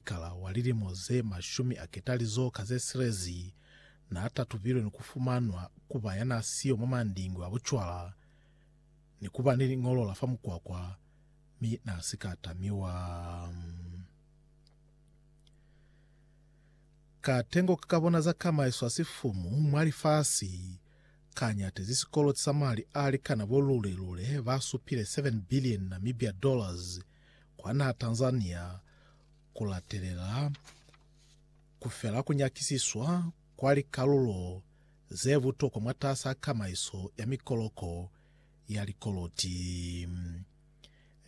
Kala wa lilimo ze mashumi a ketalizo ka ze silezi, n'a tatubilwe ni ku fumanwa ku ba ya n'a siyo mwa mandingwe a bucwala ni ku ba ni liñolo la fa mukwakwa, mi n'a si ka tamiwa. Katengo ka ka bona za kamaiso ya sifumu mwa lifasi ka ñatezi sikoloti sa mali a likana bo lule-lule ba supile 7 billion Namibia dollars kwa naha Tanzania ku latelela ku fela ku nyakisiswa kwa likalulo ze butokwa mwatas'a kamaiso ya mikoloko ya likoloti.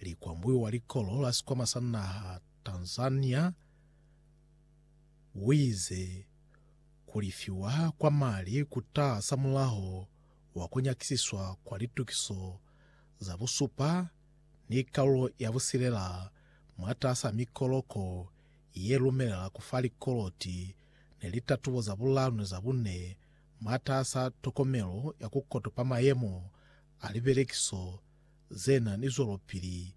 Likwambui wa likolo la sikwama sa naha Tanzania uize ku lifiwa kwa mali ku ta samulaho wa ku nyakisiswa kwa litukiso za busupa ni kalulo ya busilela mwatas'a mikoloko ye lumelela ku fa likoloti ni litatubo za bulanu ni za bune mwatas'a tokomelo ya ku kotopa mayemo a libelekiso ze na ni zwelopili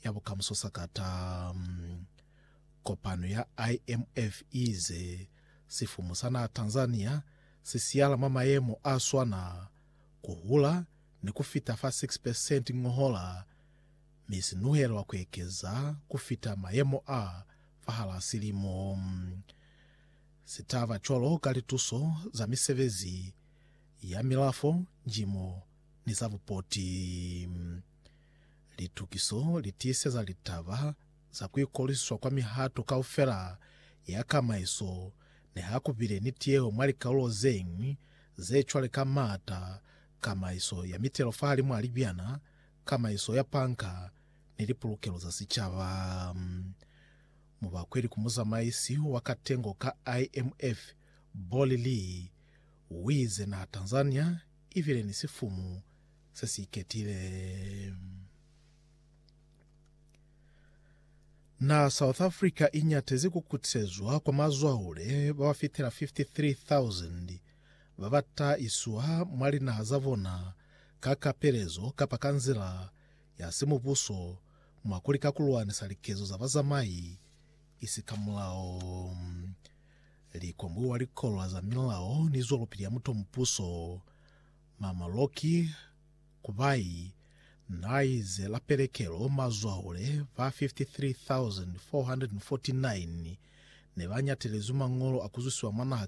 ya bukamuso sakata. Kopano ya IMF i ize sifumu sa naha Tanzania si siyala mwa mayemo a swana, ku hula, ni ku fita fa 6 percent ngohola, mi si nuhelwa ku ekeza ku fita mayemo a fahal'a silimo. Si taba cwalo ka lituso za misebezi ya milafo, njimo ni za bupoti. Litukiso li tiiseza litaba za ku ikolisiswa kwa mihato kaufela ya kamaiso niha ku bile ni tiyeho mwa likaulo ze ñwi ze cwale ka m'ata, kamaiso ya mitelo fahalimu a libyana, kamaiso ya panka, ni lipulukelo za sicaba. Mubakweli ku muzamaisi wa katengo ka IMF, Bolly Lee, uize naha Tanzania ibile ni sifumu sesiiketile. Naha South Africa inyatezi kukutisezwa kwa mazwahule babafitela 53,000 ba ba ta iswa mwa linaha za bona ka kapelezo kapa ka nzila ya simubuso mwa ku lika ku lwanisa likezo za bazamai i si ka mulao, li kombiwa likolwa za milao ni zwelopili ya mutomupuso, mamaloki, kubai, nai ze la pelekelo, mazwahule ba 53,449 ne ba nyatelezwi mañolo a ku zwisiwa mwa naha